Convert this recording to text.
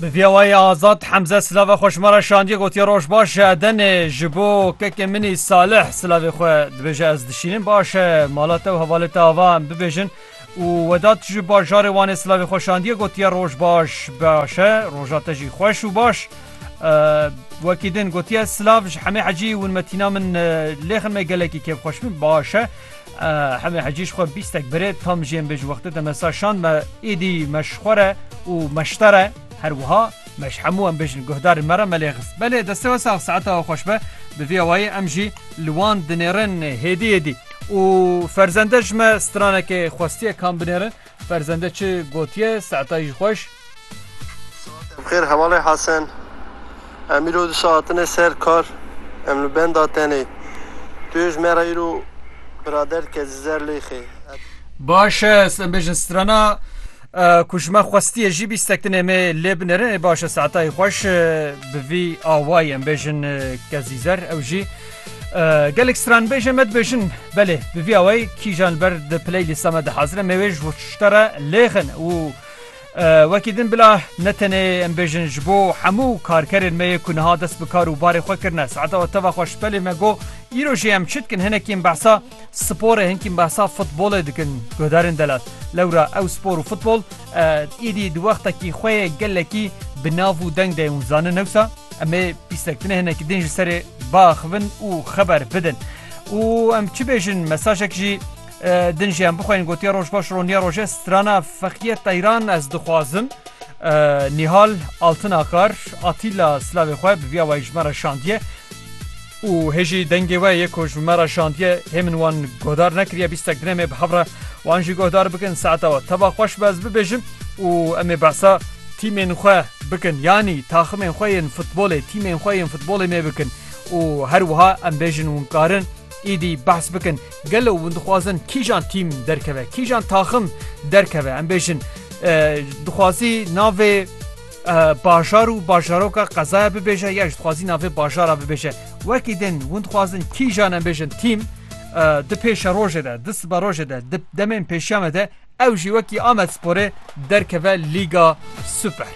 Bi viyawayê azad Hemze silava xweşmara şandiye gotiye roj baş e denê ji bo kekê minî salih silavê xwe dibêje ez dişînim baş e mala te û hevalê te ava em bibêjin û wedat ji bajarê wanê silavê xwe şandiye gotiye roj baş baş e roja te jî xweş û baş wekî din gotiye silav ji hemê hecî winmetîna min lêxin me gelekî kêfxweş min baş e Hemê hecî ji xwe bîstek birê tam jiyên bê ji wextê te me sa şand me êdî me ji xwe re û me ji te re her wiha me ji hemû em bêjin guhdarên me re me lê xist. Belê destê we sax saeta we xweş be bi vî awayî em jî li wan dinêrin hêdî hêdî û ferzende ji me stranekê xwestiye kam binêrin Ferzende çi gotiye Se'tay ji xweş. Bi xêr hevalê Hesen. Em îro di saetine ser kar. Em li benda tenê. Tu yê ji me re îro birader dike ji zer lêxê. Ed. Baş e, ez em bêjin strana ku ji me xwestiye jî bî sektinê me lê binirin. Ê baş e Se'tay xweş. Bi vî awayî em bêjin ke zîzer ew jî Gelek stranbêje me dibêjin belê bi vîya wê kîjan li ber di playlîsta me dihazire me wê ji bo tişta re lêxin û wekî din bila ne tenê em bêjin ji bo hemû karkerên me yê ku niha dest bi kar û barê xwe kirine saeta teva xwe ji pelê me got îro jê em çi dikin hinekî em behsa Sporê hinkî behsa futbolê dikin guhdarên delat. Lewra ew spor û futbol êdî di wextekî xwe yê gelekî bi nav û deng de ye û zanin newsa em ê pîsek tune hinekî din ji serê biaxivin û xeber bidin. û em çi bêjin mesajek jî din jî em bixweynin gotiye roj baş roniya roje strana feqiyê teyran ez dixwazim Nîhal Altinakar Atîla silavê xwe bi vîya wayî ji me re şandiye. Û hê jî dengê we yê ku ji me re şandiye hê min wan guhdar nekiriye bîstek dine me bi hev re wan jî guhdar bikin saeta we teva xweş be ez bibêjim û em ê behsa tîmên xwe bikin yanî taximên xwe yên futbolê tîmên xwe yên futbolê me bikin û her wiha em bêjin wan karin êdî behs bikin gelo wan dixwazin kîjan tîm derkeve kîjan taxim derkeve em bêjin dixwazî navê Bajar û bajaroka qezaya bibêje ya ji dixwazî navê bajara bibêje. Wekî din hûn dixwazin kîjan em bêjin tîm di pêşe rojê de di sibe rojê de di demên pêşiya me de ew jî wekî Amed Sporê derkeve Lîga Super.